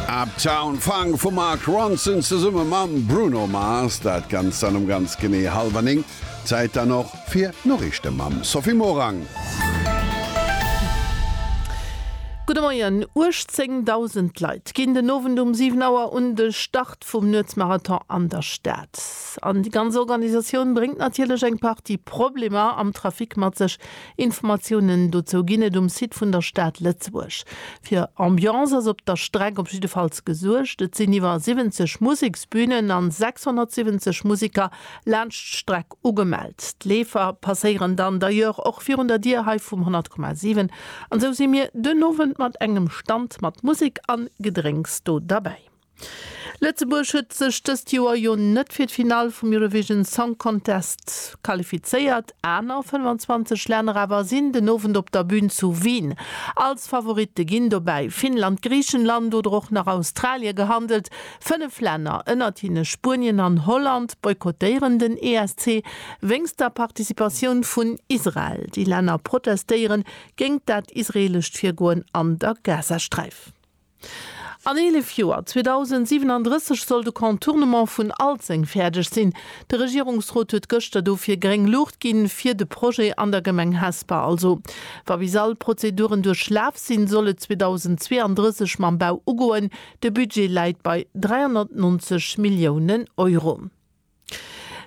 Uptown Funk vum Mark Ronson zesumme mam Bruno Mars. Dat Ganzt dann um ganz genee hallwer 9. Zäit dann och fir d'Noriichte mam Sophie Morang. Gudde Moien. 18.000 Leit ginn den Owend um 7 Auer un de Start vum Nuetsmarathon an der Stad. An déi ganz Organisatioun bréngt natierlech eng Partie Problemer am Trafic mat sech, Informatiounen dozou ginn et um Site vun der Stad Lëtzebuerg. Fir Ambiance ass op der Streck op jiddefalls gesuergt. Et sinn iwwer 70 Museksbünen an 670 Museker laanscht d'Streck ugemellt. D'Leefer passéieren dann d'ailleurs och virun der Dier hei vum 100,7 an esou si mir den Owend mat engem Stand mat Musek an Gedrénks do derbäi. Lëtzebuerg huet sech dëst Joer jo net fir d'Finall vum Eurovision Song Contest qualifizéiert, aner 25 Länner awer sinn den Owend op der Bün zu Wien. Als Favoritte ginn dobäi Finnland, Griichenland oder och nach Australie gehandelt. Fënnef Länner, ënnert hinne Spuenien an Holland, boykottéieren den ESC wéinst der Participatioun vun Israel. Déi Länner protestéieren géingt dat israeelescht Virgoen an der Gazasträif. An 11 Joer, 2037, soll de Contournement vun Alzeng fäerdeg sinn. De Regierungsrot huet gëschter dofir gréng Luucht ginn, fir de Projet an der Gemeng Hesper. Also, wa bis all Prozeduren duerchlaf sinn, soll et 2032 mam Bau ugoen. De Budget läit bei 390 Milliounen Euro.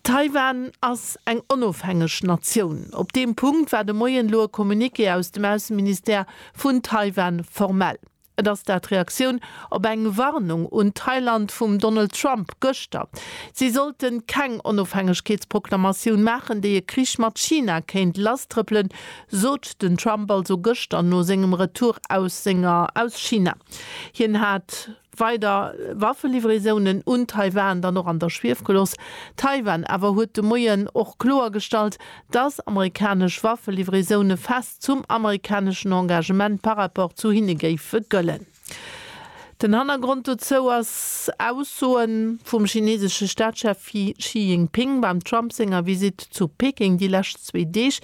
Taiwan ass eng onofhängeg Natioun. Op deem Punkt war de Moien elo e Communiqué aus dem Ausseministère vun Taiwan formell. Et ass dat Reaktioun op eng Warnung un Thailand vum Donald Trump gëschter, si sollte keng Onofhängegkeetsproklamatioun maachen, déi e Krich mat China kéint lasstrëppelen, sot den Trump also gëschter no sengem Retour aus senger aus China. Hien hat. weider Waffelivraisonen un Taiwan dann och an der Schwief gelooss. Taiwan awer huet de Moien och kloergestallt, datt amerikanesch Waffelivraisoune fest zum amerikaneschen Engagement par rapport zu hinne géife gëllen. Den Hannergrond dozou ass Aussoe vum chinesesche Staatschef Xi Jinping beim Trump senger Visitt zu Peking déi lescht zwee Deeg.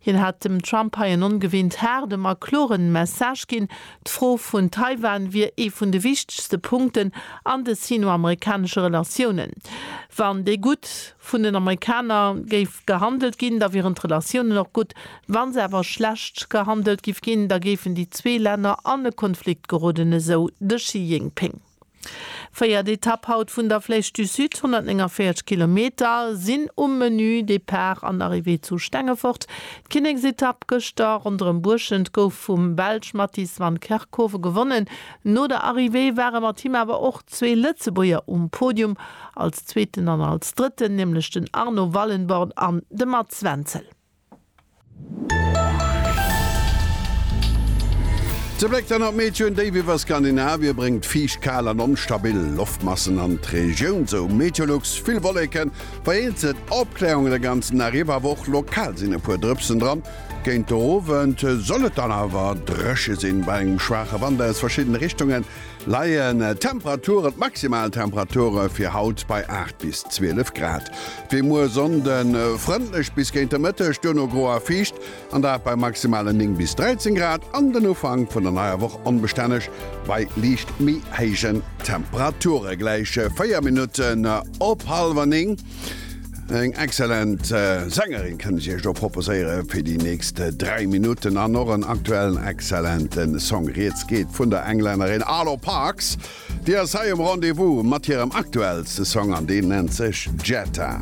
Hien hat dem Trump hei en ongewinnt haarden, ma kloren Message ginn, D'Fro vun Taiwan wier ee vun de wichtegste Punkten an de sino-amerikanesche Relatiounen. Wann déi gutt vun den Amerikaner géif gehandelt ginn, da wieren d'Relatiounen och gutt. Wa se awer schlecht gehandelt giff ginn, da géifen déi zwee Länner an e Konflikt geroden, esou de Xi Jinping. Véiert Etapp haut vun der Flèche du Sud, 149 Kilometer sinn um Menü. Depart an Arrivée zu Stengefort. D'Kinneksetapp gëschter ronderëm Buerschent gouf vum Belsch Matthijs van Kerkhove gewonnen. No der Arrivée ware mat him awer och zwee Lëtzebuerger um Podium, als Zweeten an als Drëtten, nämlech den Arno Wallenborn an de Mats Wenzel. Ze Bléck dann op d'Meteoen, Déif iwwer Skandinavien bréngt fiicht, kal an onstabil Loftmassen an d'Regioun. Sou Meteolux, vill Wolleken, vereenzelt Opkläerungen de ganzen Dag iwwer, awer och lokal sinn e puer Drëpsen dran. Géint de Owend soll et dann awer dréche sinn, bei engem schwaache Wand aus verschiddene Richtungen. Leien d'Temperaturen, d'maximal Temperature fir haut bei 8 bis 12 Grad. Wéi muer Sonnde frëndlech bis géint de Mëtteg, duerno gro a fiicht, an dat bei maximalen 9 bis 13 Grad, an den Ufank vun der neier Woch onbestänneg bei liicht méi héijen Temperature. Gläich 4 Minutten op hallwer 9. Eng exzellent äh, Sängerin kann ich Iech do proposéiere fir die nächst äh, drei Minuten an och en aktuellen exzellenten Song. Riets geht vun der Englännerin Arlo Parks, Dir ass hei um Rendezvous mat hirem aktuellste Song an deen nennt sech Jetta.